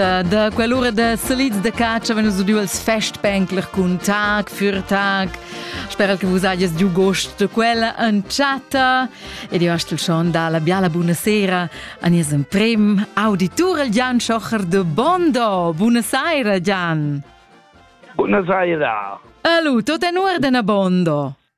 Da quell'ura da salids da caccia vegn udiu els festbänkler cun tag für tag. Sperel che vus hagies giu gost da quella entschatta. Ed io astel schon da la biala buonasera an ies en prim auditur Jan Schocher de Bondo. Buonasera Jan. Buonasera. Alu, tot en ordena Bondo.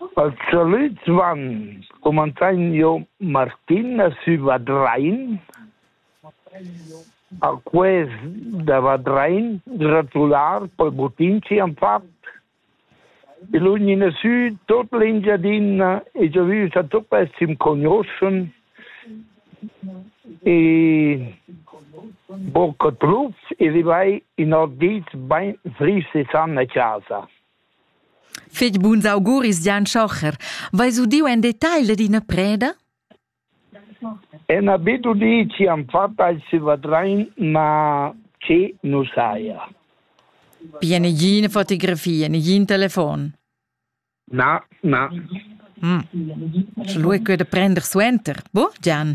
Els solits van, cumanzain jo Martina sü Vadrain. A quest da Vadrain gratular pel butin chi han fat. I lugnina sü tot l'Engiadina e giò vü sa tuot quels chi'm cognoschan. E bocca truffs e rivai in ot dis bain fris e san a casa. Fetg buns auguris, Gian Schocher. Veis udiu en detagl dad ina preda? En habit udì ci han fatta il silvadrein, ma che nu saja. Pia negina fotografia, negin telefon? Na, na. Mm. Sche lu è quei da prender suenter, bo, Gian?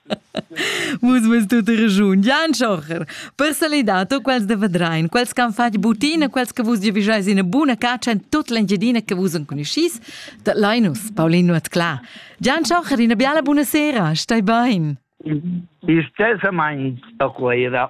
Vus vus tut regiun Jan Schocher. Per salidar tu quels de Vedrein, quels che han fatg butina, quels che vus giovijais ina buna caccia en tut l'Engiadina che vus enconuschis, da Linus, Paulino Atcla. Jan Schocher, una biala buonasera, stai bain. Istesament a Cuira.